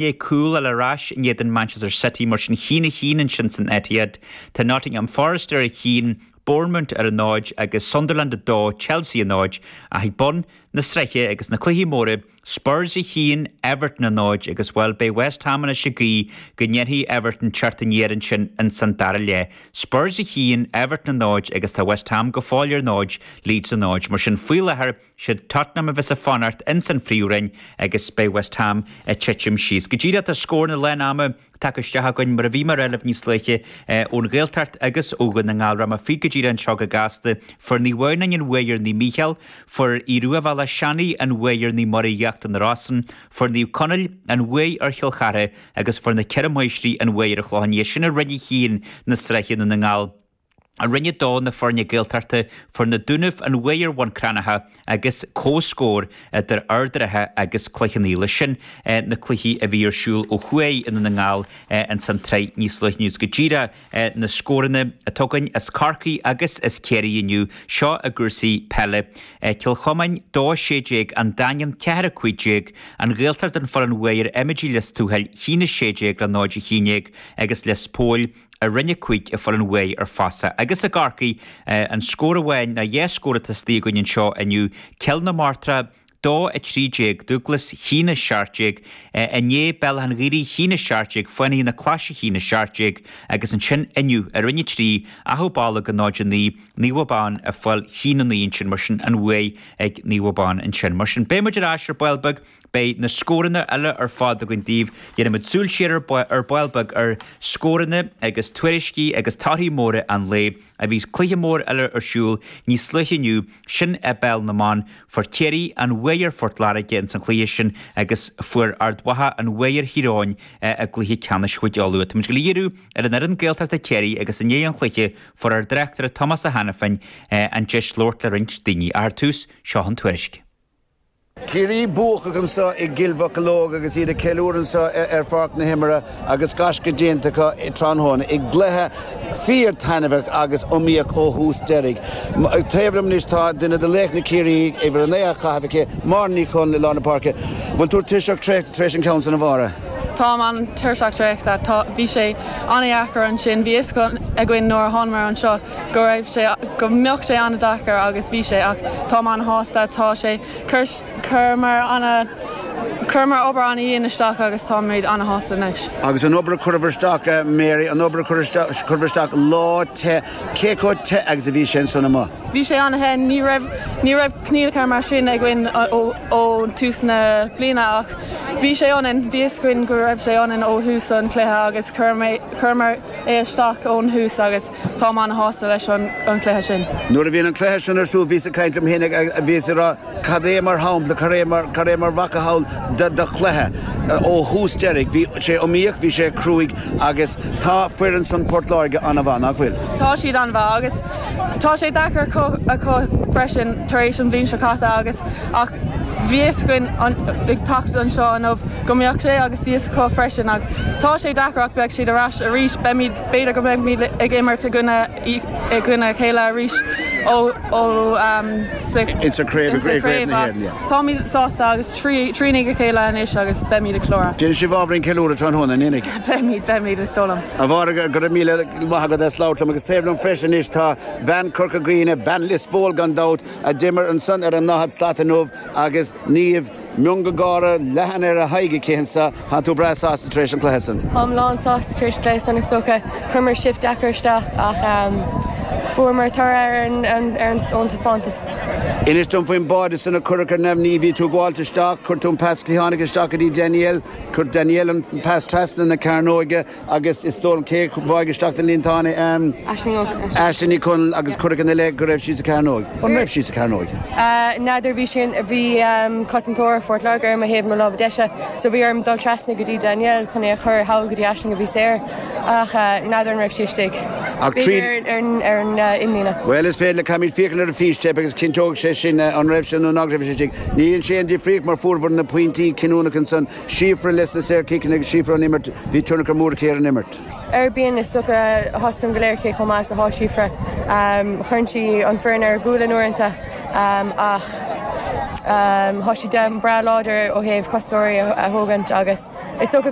Beidh cúl eile ar ais in éadan Manchester City mar sin a haon a haon ansin san Etihad. Tá Nottingham Forest ar a haon, Bournemouth ar a náid agus Sunderland 2, Chelsea a náid. Ach ag bun na sraithe agus na cluichí móra, Spurs a haon, Everton a náid agus, bhuel, beidh West Ham anois ag guí go ndéanfaidh Everton teacht aniar ansin ins an dara leath. Spurs a haon, Everton a náid agus tá West Ham go fóill ar náid, Leeds a náid. Mar sin, faoi láthair, Siad Tottenham a bheas ag fanacht ins an phríomhroinn agus beidh West Ham ag titim síos. Go díreach tá scóranna lán ama tagtha isteach againn mar a bhí mé a rá libh níos luaithe ón Ghaeltacht agus ó Dhún na nGall. Rachaidh mé fríd go díreach anseo go gasta. Fuair Naomh Adhamhnáin an bhuaidh ar Naomh Mícheál, fuair Aodh Ruadh Bhéal Átha Seanaidh an bhuaidh ar Naomh Muire Íochtar na Rosann, fuair Naomh Conaill an bhuaidh ar Chill Chartha agus fuair na Ceithre Máistrí an bhuaidh ar an Chlochán Liath. Sin i roinn a haon na sraithe i nDún na nGall. I roinn a dó na foirne Gaeltachta fuair na Dúnaibh an bhuaidh ar Bhun Cranncha agus comhscór idir Ard an Rátha agus Cloich Cheann Fhaola. Sin na cluichí a bhí ar siúl ó thuaidh i nDún na nGall ins an tsraith níos luaithe inniu. Go díreach na scóranna atá againn as Corcaigh agus as Ciarraí inniu. Seo i gcúrsaí peile. Cill Chuimín 2 16 An Daingean 4 15 An Ghaeltacht a fuair an bhuaidh ar Eiméidigh Lios Tuathail 1 16 le 0 11 agus Lios Póil i roinn a cúig a fuair an bhuaidh ar Fossa agus i gCorcaigh an scór amháin nó dhá scór atá istigh againn anseo inniu, Cill na Martra 2, 13, Dúglas 1 17, inné, Béal Átha an Ghaorthaidh 1 17, Fánaithe na Claise 1 17 agus ansin inniu i Roinn 3, Achadh Bolg 0, 9, Naomh Abán a fuair 1 9 ansin mar sin an bhuaidh ag Naomh Abán ansin mar sin beidh muid ar ais ar ball beag Beidh na scóranna uile ar fad againn daoibh. Dhéanfaimid súil siar ar ball beag ar scóranna agus tuairiscí agus torthaí móra an lae a bhí cluiche mór eile ar siúl níos luaithe inniu, sin i bPeil na mBan. Fuair Ciarraí an bhuaidh ar Phort Láirge insan chluiche sin agus fuair Ard Mhacha an bhuaidh ar Thír Eoghain i gcluiche ceannais Chúige Uladh. Táimid ag díriú ar an fhoireann Gaeltachta Chiarraí agus i ndiaidh an chluiche fuair ár dtráchtaire Tomás Ó hAiniféin an deis labhairt le roinnt daoine. Ach ar tús, seo an tuairisc. Ciarraí buacach anseo i gCill Mocheallóg agus iad ag ceiliúradh anseo ar Pháirc na hImeartha agus gaisce déanta acu tráthnóna i gcluiche fíor taitneamhach agus iomaíoch ó thús deiridh. Taobh liom anois tá duine de laochra Chiarraí, uimhir a naoi á chaitheamh aici, Máire Ní Chonaill i lár na páirce. Bhfuil tú tuirseach traochta tar éis an ceann sin a Mháire? Táim an-tuirseach traochta. Tá, bhí sé an-dheacair ansin. Bhí a fhios againn nuair a thánamar anseo go raibh sé, go mbeadh sé an-deacair agus bhí sé ach táim an-shásta, tá sé, chuir, chuireamar ana, chuireamar obair ana-dhian isteach agus táimid ana-shásta anois. Agus an obair a chuireamar isteach, a Mary, an obair a chuir isteach, chuireamar isteach lá te, cé chomh te agus a bhí sé ansan amuigh? Bhí sé ana-the, ní raibh, ní raibh coinníollacha mar sin againn ó, ó thús na bliana ach bhí sé ionainn, bhí fhios againn go raibh sé ionainn ó thús an chluiche agus chuir mé, chuireamar é isteach ón thús agus Táim an-shásta leis an chluiche sin. Nuair a bhí an cluiche sin ar siúl bhíos ag caint liom féin agus bhíos ag rá 'cad é mar sheampla, cad é mar mhacasamhail de chluiche ó thús deireadh, bhí sé iomaíoch, bhí sé cruaidh agus tá foireann san Port Láirge an-mhaith, nach bhfuil? Tá siad an-mhaith agus tá sé deacair acu freisin tar éis an bhliain seo caite agus, ach bhí fhios againn ag teacht anseo inniu go mbeadh sé agus bhí fhios acu freisin ach tá sé deacair ach beidh siad ar ais arís, beimid. B'fhéidir go mbeimid ag imirt i gcoinne a chéile arís sa chraobh ach táimid sásta agus trína chéile anois agus beimid ag ceiliúradh. Déanfaidh sibh ábhairín ceiliúrtha tráthnóna, an mbeidh? Beimid, beimid, is dóigh liom. A Mháire, go raibh míle maith agat as labhairt liom agus taobh liom freisin anois tá bean Chorca Dhuibhne, bean Lios Póil gan dabht, a d'imir ansan ar an ndaichead slat inniu agus Niamh, Miongháire leathan ar a haghaidh aici, ansa, tánn tú breá sásta tar éis an chluiche san? Táim lánsásta tar éis cluiche san, is dócha. Chuireamar shift deacair isteach ach fuaireamar toradh ar ár dtaispeántas. Inis dom faoin mbáide san a cuireadh ar neamhní. Bhí tú ag gabháilt isteach, chuir tú an pas cliathánach isteach go dtí Danielle, chuir Danielle an pas trasna na cearnóige, Agus is dóigh liom, cé a bháigh isteach sa líontán é? Aisling Ó Conaill. Aisling Ní Chonaill agus cuireadh ina leith go raibh sí sa chearnóig. An raibh sí sa chearnóig? N'fheadar, bhí sin, bhí cosantóir Phort Láirge ar mo thaobh, mo lámha deise, so bhí orm dul trasna go dtí Danielle chun é a chur thall go dtí Aisling a bhí saor, ach n'fheadar an raibh sí istigh. Ach tríd. B'fhéidir ar an imlíne. Bhuel, is féidir linn féachaint ar an bhfístéip agus cinnteoidh sé sin an raibh sí nó nach raibh sí istigh. Níl sé ina aon difríocht mar fuaireamar na pointí cinniúnacha ansan Síofra leis na saorchiceanna agus Síofra ón imirt, bhí tionchar mór aici ar an imirt. Ar, bíonn is dócha a fhios againn go léir cé chomh maith is atá Síofra. Chuireann sí an foireann ar a gualainn uaireanta ach tá sí breá láidir ó thaobh cosantóirí a thógaint agus is dócha